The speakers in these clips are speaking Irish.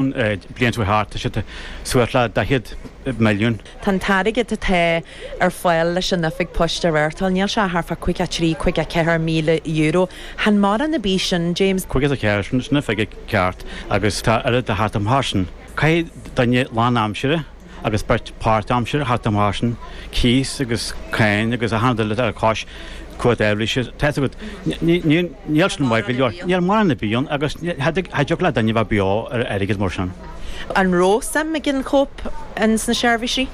bliain seo thart tá siad suas le 40 milliún. Tá an t-airgead atá ar fáil leis an Oifig Poist a reáchtáil, níl sé thart fá caoga trí, caoga ceathair míle Euro. Chan mórán ar bith sin, James. Caoga is a ceathair, sin an figure ceart agus tá oiread le theacht amach as sin. Caithfidh duine lánaimsire agus beirt páirtaimseartha theacht amach as sin, cíos agus cáin agus achan rud eile, árachas, cumhacht aibhléise atá agat. Níl sin maith go leor. Níl mórán ar bith ann agus cha dtiocfadh le duine bheith beo ar airgead mar sin. An raibh suim ag an co-op ins na seirbhísí?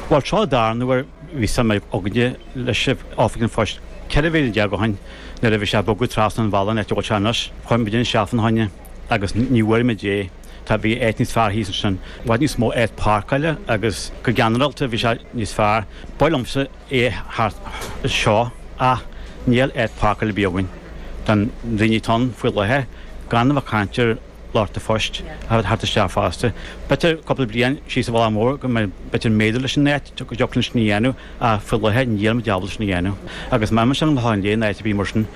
Bhuel seo an dara huair a bhí suim againne leis Oifig an Phoist ceithre bliana déag ó shin nuair a bhí sé ag bogadh trasna an bhealaigh an áit a bhfuil sé anois. Chuir muidinne isteach fána choinne agus ní bhfuair muid é. Tá bhí áit níos fearr thíos ansin, i bhfad níos mó áit páirceála agus go ginearálta bhí sé níos fearr. B'fhearr liomsa é thart anseo ach níl áit páirceála ar bith againn do na daoine atá ann faoi láthair, gan a bheith ag caint ar lucht an phoist ag teacht isteach fosta. B'fhéidir cúpla bliain síos an bealach mór go mbeidh, b'fhéidir méadú leis an áit go dtiocfadh linn sin a dhéanamh. Ach faoi láthair níl muid ábalta sin a dhéanamh. Agus má imíonn sé chun an Chlocháin Léith ná áit ar bith mar sin,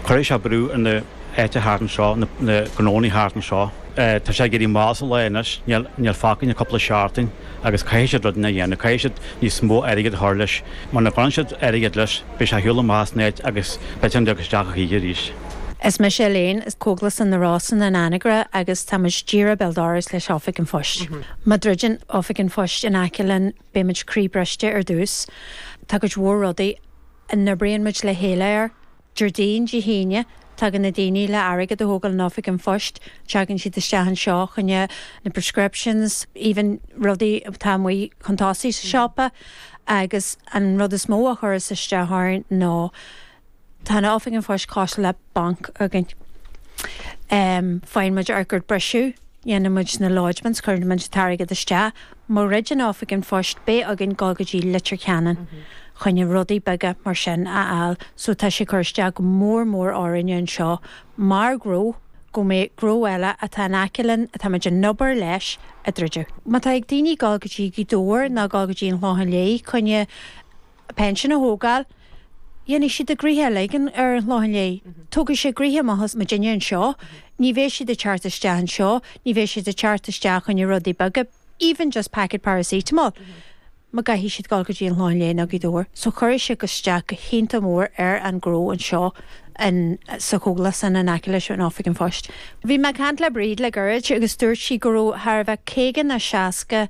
cuirfidh sé brú ar na h-áiteacha thart annseo, na gnóannaí thart annseo. Tá sé ag éirí mall sa lá anois, níl fágtha ach cúpla seachtain, agus caithfidh siad rud inteacht a dhéanamh. Caithfidh siad níos mó airgid a chur leis. Muna gcuireann siad airgead leis, beidh sé ar shiúl amach as an áit agus ní bheidh sé ag pilleadh isteach a choíche arís. Is mise Elaine, as Cógaslann na Rosann in Anagaire agus táimid díreach béal dorais leis Oifig an Phoist. Má dhruideann Oifig an Phoist in aice linn, Beidh muid croíbhriste ar dtús. Tá cuid mhór rudaí a n-oibríonn muid le chéile air. Déardaoin, Dé hAoine, tagann na daoine le airgead a thógáil in Oifig an Phoist. Tagann siad isteach anseo choinne na prescriptions, even rudaí atá amuigh chun tosaigh sa siopa. Agus an rud is mó a chuireas isteach orainn ná Tá an Oifig an Phoist cosúil le banc againn. Faigheann muid ár gcuid briseadh, déanann muid na lodgements, cuireann muid an t-airgead isteach, má dhruideann Oifig an Phoist beidh againn dul go dtí Leitir Ceanainn choinne rudaí beaga mar sin a fháil so tá sé ag cur isteach go mór mór orainne anseo mar ghnó go mbeidh gnó eile atá in aice linn atá muid ag obair leis ag druid. Má tá ag daoine dul go dtí Gaoth Dobhair ná dul go dtí an Clochán Liath choinne. a pension a thógáil. Déanfaidh siad a ngnoithe uilig ar an Chlochán Liath. Tógfaidh sé a ngnoithe amach as muidinne annseo. Ní bhéidh siad ag teacht isteach annseo, ní bhéidh siad ag teacht isteach choinne rudaí beaga, even just packet paracetamol, má chaithfidh siad dhul go dtí an Clochán Liath nó Gaoth Dobhair. So cuirfidh sé isteach go h-iontach mór ar an gnó annseo in, sa chógaslann in aice leis an Oifig an Phoist. Bhí mé ag cainnt le Bríd le goirid agus dúirt sí go raibh thart ar b'fhéidir caoga ná seasca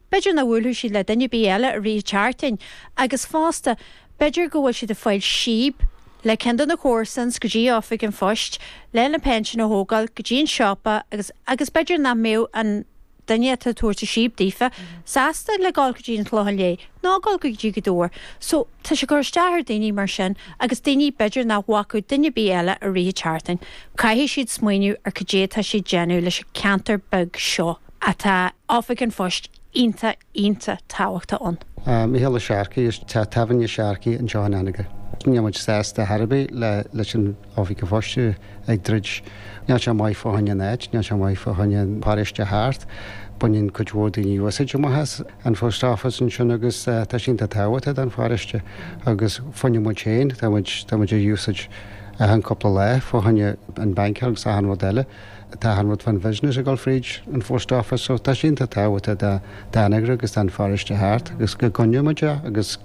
B'fhéidir nach mbuailfidh siad le duine ar bith eile i rith a tseartain, agus fosta, b'fhéidir go bhfuil siad ag fáil síob le cionn de na comharsain go dtí Oifig an Phoist lena bpinsean a thógáil, go dtí an siopa agus agus b'fhéidir nach mbeadh an duine atá ag tabhairt an síob daofa sásta le dhul go dtí an Chlochán Liath, ná dhul go dtí Gaoth Dobhair. So, tá sé ag cur isteach ar daoine mar sin agus daoine b'fhéidir nach bhfeicfeadh duine ar bith eile i rith a tseartain. Caithfidh siad smaoineamh ar cad é tá siad a dhéanamh leis an ceantar beag seo. atá Oifig an Phoist iontach iontach tábhachtach ann. Micheál Ó Searcaigh as Teach Tábhairne Sharkey anseo in Anagaire. Níl muid sásta ar chor ar bith leis an Oifig an Phoist a bheith ag druid. Níl sé maith fá choinne an áit, níl sé maith fá choinne an paróiste thart. Baineann cuid mhór daoine úsáid amach as an phost office ansin agus tá sé iontach tábhachtach don pharóiste agus fá choinne muid féin, tá muid ag úsáid achan cúpla lá fá choinne an banc agus achan rud eile. Tá achan rud fán bhisnis ag dul fríd an Phost Office so tá sé iontach tábhachtach do Anagaire agus don pharóiste thart agus go gcoinneodh muid é agus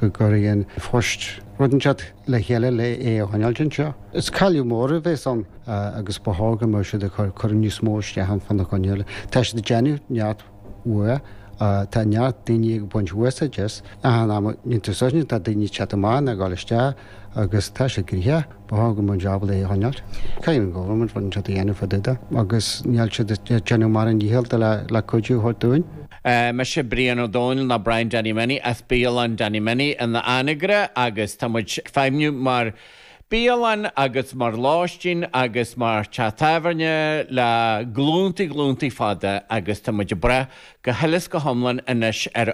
go gcuirfidh An Post rud inteacht le chéile le é a choinneáilt anseo. Is cailliúint mhór a bhéas ann agus ba chóir go mbeadh siad ag cur cur níos mó isteach ann fá choinne a choinneáil. Tá siad ag déanamh neart uaidh. Tá neart daoine ag baint úsáid as i achan am i ndintiúr sochraide. Tá daoine ag teacht amach ag dul isteach agus tá sé ag rith. Ba thábhach dom an jab é a choinneáilt. Caithfidh an Government rud inteacht a dhéanamh fá dtaobh dó agus níl siad ag déanamh a ndícheall le cuidiú a thabhairt dúinn. Mise Brian Ó Domhnaill nó Brian Danny Minnie as bialann Danny Minnie in Anagaire agus tá muid ag feidhmniú mar bialann agus mar lóistín agus mar teach tábhairne le glúntaí glúntaí fada agus tá muid ag brath go huile is go hiomlán anois ar